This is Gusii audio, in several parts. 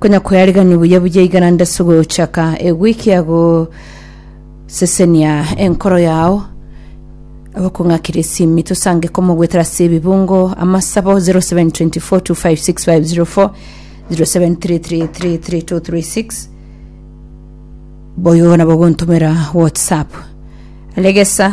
Konya koyariganio buya buya igana nde ase ogochaka ewiki ya gosesenia enkoro yao abakong'akire esimi tosange komogwetera ase ebibungo amasabo 0724256504 0733333236 boyo nabo ogontomera whatsapp regesa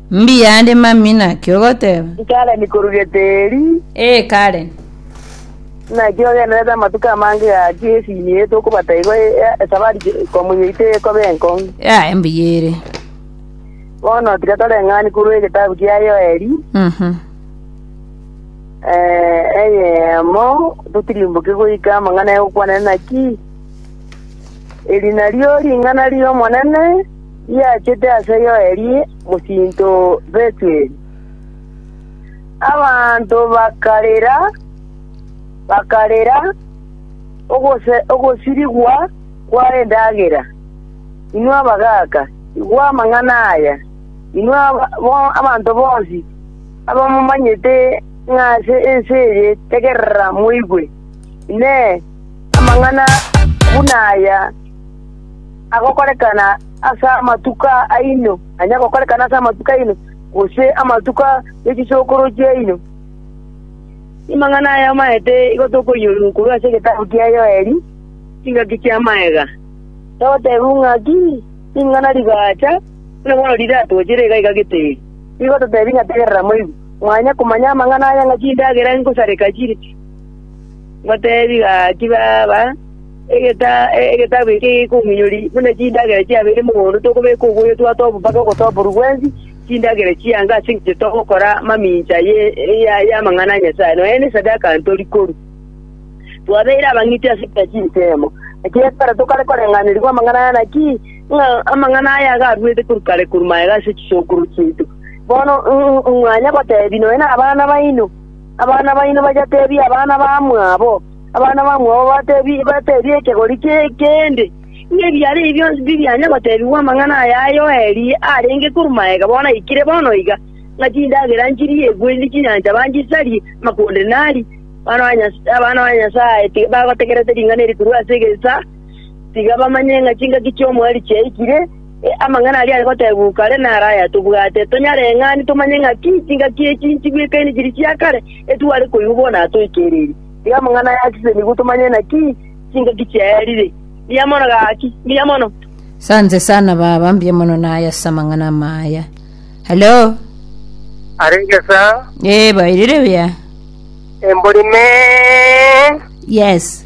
Mbuya ande mami naki ogoteba? Karen korwa Geteri. Ee Karen. Naki ogenderete amatuko amange gaki esini eye tokobata igo ya esabari komonyoito ekobe enkong'u. Yaye mbuya ere. Bono tiga toreng'ani korwa egetabu kia Yoeli, Mhm. eh, eyemo, totirimboke goika amang'ana y'ogokwana naki eri nario ring'ana ri'Omonene, Riachete ase Yoeli mosinto o Betueli. Abanto bakarera, bakarera ogose ogosirigwa kw'endagera. Inwe abagaaka, igwa amang'ana aya, inwe aba- bo- abanto bonsi abamomanyete ng'a ase ense eye tegerera moigwe. Inee! Amang'ana buna aya agokorekana ase amatuko aino, onye agokorekana ase amatuko aino, gose amatuko e chisokoro chiaino. Amang'ana aya amaete igo tokoiyorwa korwa ase egetabu kia Yoeli, chingaki chia magega, togotebiwa ng'aki ring'ana rigaacha, buna bono riratwochere iga iga gete eri. Nigo totebi ng'a tegerera moigwe, mwanye komanya amang'ana aya ng'a chindagera ngosareka chire. Ngoteebie gaki, baba, egetabu eke gekominyoria buna chindagera chiabeire mogondo tokobeka oboyotwa tobo mpaka ogotoborwa gwensi, chindagera chiange ase engencho togokora mamincha y'amang'ana a Nyasae, nonya nesadaka ntori korwa. Twabeire abang'iti ase kera chinsemo, naki ekero tokare koreng'anerigwa amang'ana aya, naki ng'a amang'ana aya iga arwete korwa kare korwa magega ase chisokoro chiaito, bono mwanya goteebia nonya nabana baino. Abana baino bayateebie abana bamwabo, abana bamwabo bateebie ekegori kende, ng'a ebiaare ebi bionsi tibianya goteebigwa amang'ana aya a Yoeli arenge korwa magega bono aikire bono iga, ng'a chindagera nchirie egwendi chinyancha banchisarie, amakonde nari. Abana ba Nyasae tiga bagotegerete ring'ana eri korwa ase egesaa, tiga bamanye ng'a chingaki chi'omoerio chiaikire. Amang'ana aria are goteebwa oo kare naro aya tobwate, tonyareng'ane tomanye ng'aki chingaki echi nchibwekaine chiri chia kare, etware koigwa bono aa toikereire. Tiga amang'ana aya asise nigo tomanye naki chingaki chiaerire. Mbuya mono gaki. Mbuya mono. Sante sana baba, mbuya mono naye ase amang'ana amaya. Hello. arenge sa Eh, bairire buya. embori me Yes.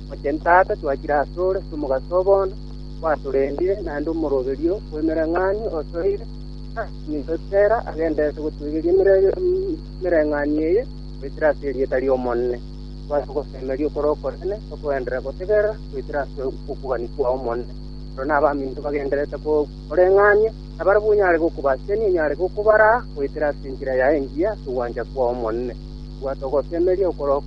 Oche ntata, twachire asore ase omogaso oo bono gwatorendire, naende omoroberio bw'emereng'anio osoire, naki ninto Tera agenderete gotoigeria emereng'anio eye goetera ase erieta ri'Omonene, twase gosemeria okore okonene tokoenderera gotegerera goetera ase okogania kw'Omonene. Oro nabaminto bagendererete koreng'ania, nabarabwo onyare gokobasisania, onyare gokobaraa goetera ase enchera yaye engiya ase ogwancha kw'Omonene. Bwata ogosemeria okore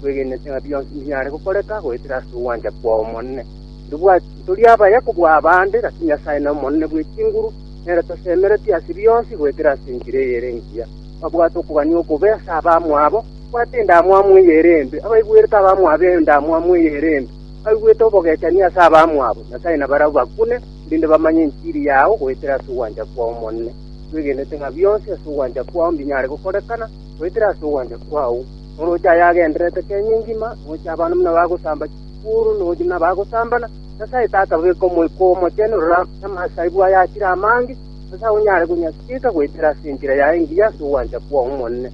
twegenete ng'a bionsi mbiare gokoreka goetera ase ogwancha kw'Omonene. Ndibwati ntori abaya kobua abande, lakini Nyasae n'Omonene bwe chinguru, nere tosemeretie ase bionsi goetera ase enchera eye ere engiya. Babwate okogania okobe ase abamwabo, babwate endamwamu eye ere embe, abaigwerete abamwabo endamwamu eye ere embe, baigwete obogechani ase abamwabo. Nyasae nabarabwo bakune, erinde bamanye enchiri yao goetera ase ogwancha kw'Omonene. Twegenete ng'a bionsi ase ogwancha kwao mbinyare gokorekana, goetera ase ogwancha kwao, oroche aye agendererete kenya engima, noche abana buna bagosamba chikuru, noche buna bagosambana, Nyasae Tata beka Omoika Omochenu roro ase amasaibu aya achire amange, ase agwo nyare konyasieka goetera ase enchera yaye engiya ase ogwancha kwao, Omonene.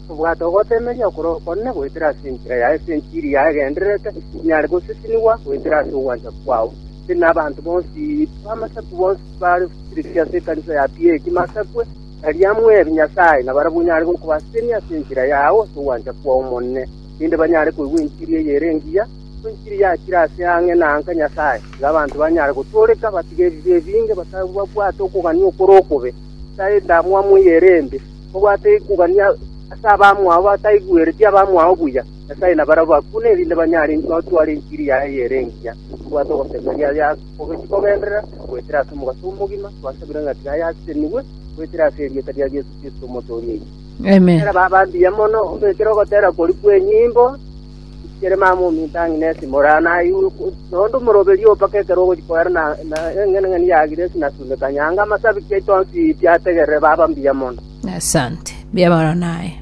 Obwate ogotemeria okoro okonene goetera ase enchera yaye, ase enchiri yaye egendererete, enyare gosisinigwa goetera ase ogwancha kwao. Inche na abanto bonsi b'amasaku bonsi bare siriri ase ekanisa ya PA ekimo asakwe, Taria mweri Nyasae, na barabwo nyare gokobasiria ase enchera yao ase ogwancha kwao omonene, erinde banyare koigwa enchiri eyere engiya, enchiri yachire ase ang'e na anka Nyasae, nigo abanto banyare gotooreka, batige ebibe ebinge, batabwate okogania okore okobe, bataae endamwamu eyere embe, babwate kogania ase abamwabo, bataigwereti abamwabo buya. Nyasae, nabarabwo bakune, erinde banyare gotwara enchiri yaye eyere engiya, babwate ogosemeria. Ogochika ogenderera goetera ase omogaso omogima, twasabire ng'a tiga ayasesenigwe goetera ase erieta ria Yeso Kristo, Omotoori oito. Amen. Era baba mbuya mono obekere ogotera kori kw'enyimbo ichikere mama ominto ang'e na esimore aa naye iguru nonde omoroberio oo mpaka ekero ogochia koera na na eng'enang'eni ya Agiresi na Suneka nyanga amasabiki aito onsi piategerere baba mbuya mono. Asante. Mbiabaro naye.